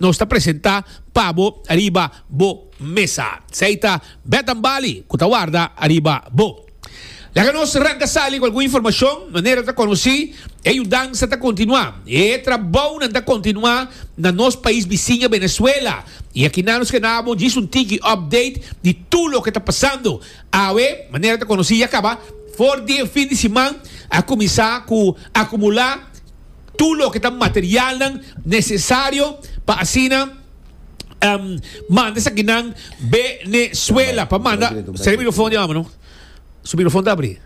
Nos ta presenta pa bo ariba bo mesa. Sei ta Bed and Bali cu ta warda ariba bo. Laga nos ranca sali cu algun informacion. Manera ta conoci, e yudansa ta continua y e trabounan ta continua na nos pais bisiña Venezuela. Y akinan nos ke nabo djis un tiki update di tur loke ta pasando. Awe, manera ta conoci, ya caba. For di e fin di siman a cuminsa cu acumula. Tur loke ta materialnan nesesario pa asina manda esaki nan Venezuela. Pa manda. Sera e microfon di Amo no. Su microfon ta abri.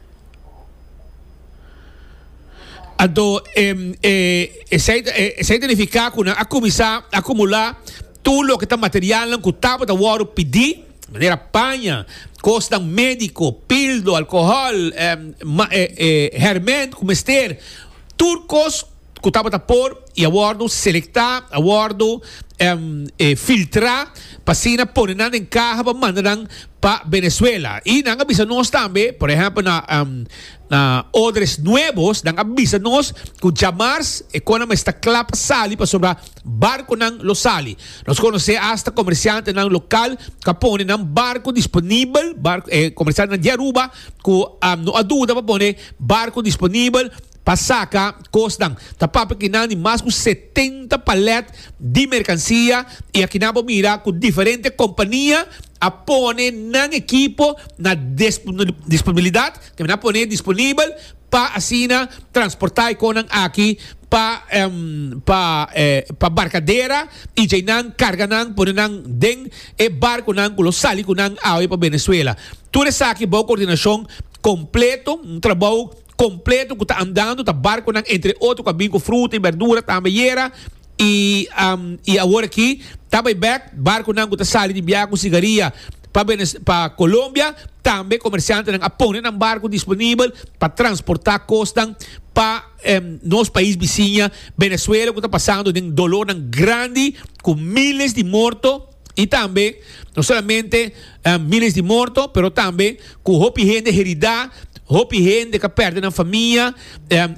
Anto esei ta nifica cu nan a cuminsa acumula Tur loke ta materialnan ku tabata wòru pidi, manera paña, kosnan médiko, pildo, alkohòl, hèrmènt ku mester, tur kos ku tabata por i a wòrdu selektá, a wòrdu filtrá pa asina pone nan den kaha pa manda nan pa Benezuela. I nan a bisa nos tambe, por ehèmpel na na Odres Nuebos, nan a bisa nos ku djamars e kon nan mester ta kla pa sali pasobra, Barconan lo sali. Nos conoce hasta comerciantenan local cu a pone nan barco disponibel, barco, eh, comerciantenan di Aruba cu a, no a duda pa pone barco disponibel pa saca cosnan. Ta papia aki nan di mas cu setenta palet di mercancia y aki nan a por mira cu diferente compania a pone nan ekipo na disponibilidad, ta kende nan a pone disponibel, pa asina transporta e konan aki pa pa barkadera y djei nan karga nan pone nan den e barkonan cu lo sali cu nan awe pa Venezuela. Tur esaki bao coordinacion completo, un trabao completo cu ta andando, ta barconan entre otro cu a bin cu fruta y berdura tambe ayera. I i awor aki ta bay bek barconan cu ta sali di biaha cu sigaria pa pa Colombia. Tambe comerciantenan a pone nan barco disponibel pa transporta cosnan pa nos pais bisiña Venezuela cu ta pasando den dolornan grandi cu miles di morto. Y tambe no solamente miles di morto, pero tambe cu hopi hende heridá, hopi hende ca perde nan famia,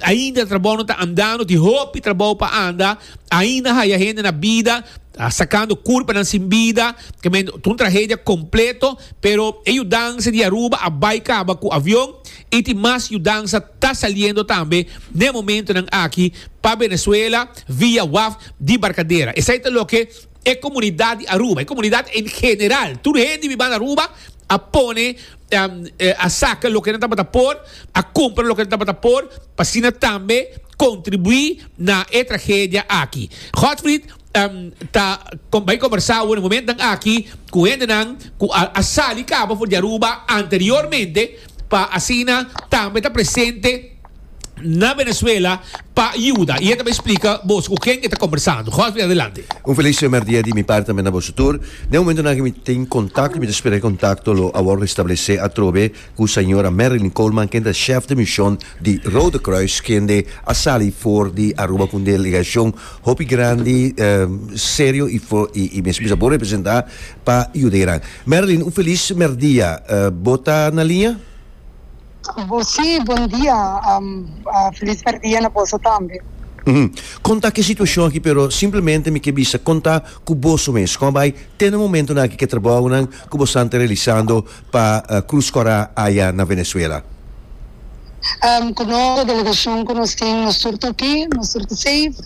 ainda trabou no ta andando, tin hopi trabou pa anda, ainda haya hende na bida, sacando curpanan sin bida, ta un tragedia completo, pero e yudansa di Aruba a bay caba cu avion y tin mas yudansa ta saliendo tambe n'e momentonan aki pa Venezuela via waf di Barcadera. Esey ta loke. E comunidad di Aruba, e comunidad en general, tur hende di banda Aruba a pone, a saca loke nan tabata por, a cumpra loke nan tabata por, pa asina tambe contribui na e tragedia aki. Godfried ta bay conversa awe na momentan aki cu hendenan cu al a sali caba for di Aruba anteriormente, pa asina tambe ta presente. na Venezuela pa yuda y e ta bay splica boso cu ken e ta combersando. Hosby adelante. Un feliz primer dia di mi parti tambe na boso tur. Den momentonan cu mi tin contacto y mi ta spera cu e contacto lo a wor restablece atrobe cu Sra. Marilyn Coleman ken ta chef di mision di Rode Kruis kende a sali for di Aruba cu un delegacion hopi grandi, serio y for y mes bisa bon representa pa yudenan. Marilyn un feliz primer dia. Bo ta na linea? Bo si, bon dia. Felis berdia na boso tambe. Hm. Kon ta ke situashon aki pero simplemente mi ke bisa kon ta ku boso mes. Kon a bai te na momentunan aki ke trabounan ku bosan ta realisando pa Krus Kòrá aya na Venezuela? Ku nos e delegashon ku nos tin nos tur ta oke, nos tur ta safe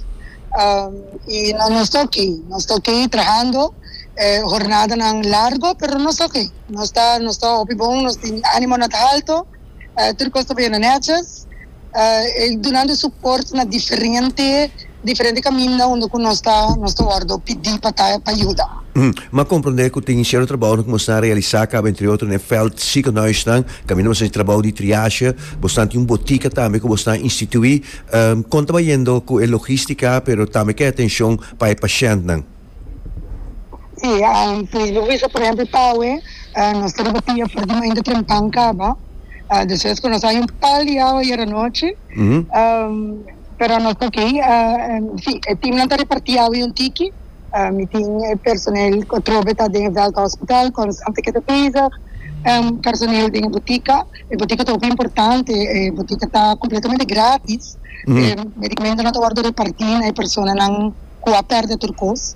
i nos ta oke. Nos ta oke trahando, e hornadanan largo pero nos ta oke. Nos ta nos ta hopi bon, nos tin animo na ta alto, tur cos ta bay na neches, e dunando support na diferente diferente caminda unda cu nos ta nos ta wordo pidi pa ta pa yuda. M'a comprende cu tin cielo trabao na cuminsa a realisa caba entre otro n'e Veld Ziekenhuisnan, caminda bo saci trabao di triage, bosnan tin un botica tambe cu bosnan institui, con ta bay yendo cu e logistica pero tambe k'e atencion pa e pashentnan? Si, si lo bisa por ehempel pa awe nos ta riba pia for di mainta trempan caba, despues cu nos a haña un pal di awa ayer anochi, pero nos ta ok, si e teamnan ta reparti awa un tiki, mi tin e personel atrobe ta den e Veld Hospital con Santa Kita bezig, personel den e butica. E botica ta hopi importante, e botica ta completamente gratis, e medicamentonan ta wordo reparti na e personanan cu a perde tur cos.